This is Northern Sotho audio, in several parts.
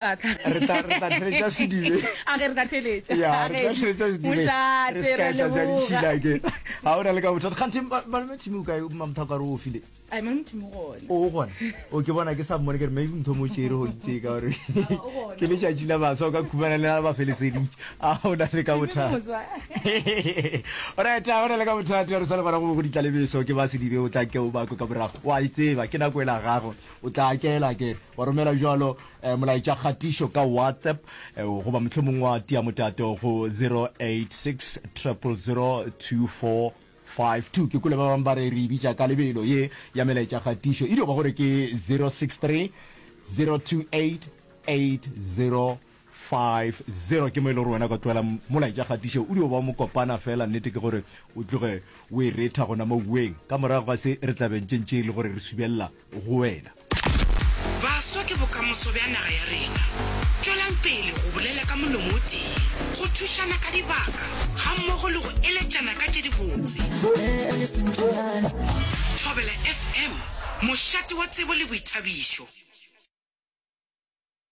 re tla re tla theletša sedibe a ge re tla theletša ya re tla theletša sedibe re ska tla ja ditšhila ke ha ona le ka bothata kganthe malome tshimo ka mamtha ka re o file ai malome tshimo gona o gona o ke bona ke sa mmone ke re maybe mtho mo tšere go itse ka gore ke le tšatši la baswa ka khumana le ba felesedi a ona le ka bothata right a ona le ka bothata re sa le bona go go ditla lebeso ke ba sedibe o tla ke o bako ka morago wa itseba ke nako e la gago o tla kela ke wa romela jalo um molaetša kgatišo ka whatsapp um goba mohlomong wa tia motato go 0860002452 ke kule ba bangwe ba re re ibitša ka lebelo ye ya melaetša kgatišo e dio ba gore ke 063 028 8050 ke mo e le gore wena ka tloela molaetša kgatišo o dio ba mokopana fela nnete ke gore o tloge o e retha gona moweng ka morago ga se re tlabentšentše e le gore re subelela go wena. Baswa ke bokamoso bja naga ya rena. Tšwelang pele go bolela ka molomo o tee, go thušana ka dibaka gammogo le go eletšana ka tše dibotse. Thobela FM, mošate wa tsebo le boithabišo.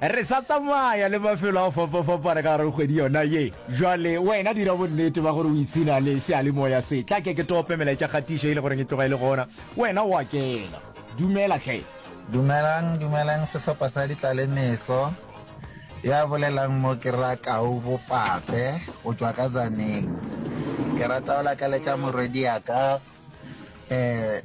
Re sa tsamaya le mafelo a fapafapana ka gare go kgwedi yona ye. Bjale, wena dira bonnete ba gore o ipshina le seyalemoya se. Tla ke ke tope melaetšakgatišo e le goreng e tloga e le gona. Wena o a kena. Dumela hle. Dumelang, dumelang sehlopha sa ditlalemeso. Ya bolelang mo ke Rra Kau Bopape go tšwa ka Tzaneen. Ke rata go lakaletša morwediaka, eh,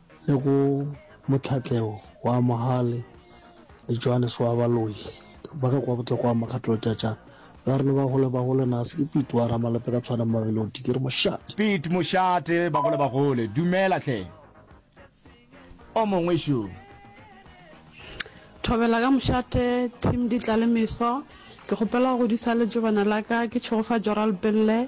le go mohlatleo wa Mohale le Johannes wa Baloyi ba ka kwa botloko wa makgatlo tšatša la rene ba gole ba gole nase ke Pete wa Ramalepe ka tshwana Mamelodi ke re mošate Pete mošate ba gole ba gole dumela hle o mongwe šo. Thobela ka mošate team di tla le meso ke kgopela go godisa letšobana la ka ke tšhegofatšo ralpelle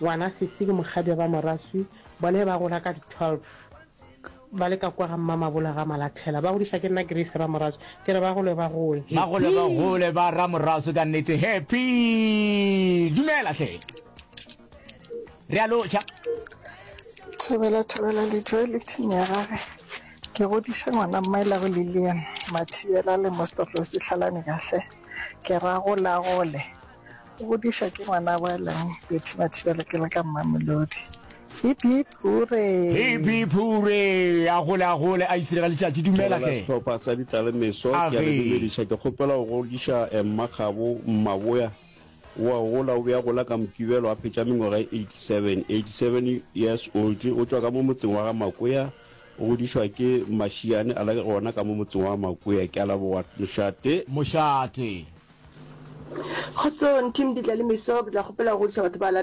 Ngwana Sisi ke mokgadi wa ba Moraswi, bona e ba gola ka di 12 ba le ka kwa ga Mmamabolo ga Malathela. Ba godiša ke nna Grace Ramoraswi, ke re ba gole ba gole. Ba gole ba gole ba Ramoraswi ka nnete Happy! Dumela hle! Re a lotšha. Thobela Thobela Lejo e le thing ya gage. Ke godiše ngwana Mmaelago Lilian Mathibela le Mostopo Sihlalane ka hle. Ke ra gole a gole. O bodiša ke ngwana wa lang Betty Mathiba le ke le ka Mmamelodi. Hip hip hure. Hip hip hure. A gole a gole a itsire ga letšatši dumela hle. Sehlopha sa ditlalemeso ke a le dumediša ke kgopela go godiša Emma Kgabo Mmaboya wa gola o be a gola ka Mokibelo a phetša mengwaga e 87 87 years old o tšwa ka mo motseng wa ga Makoya o godišwa ke Mashiane a le gona ka mo motseng wa Makoya ke a leboga Mošate Mošate Kgotsong team Ditlalemeso, ke tla kgopela go godiša batho ba latelago.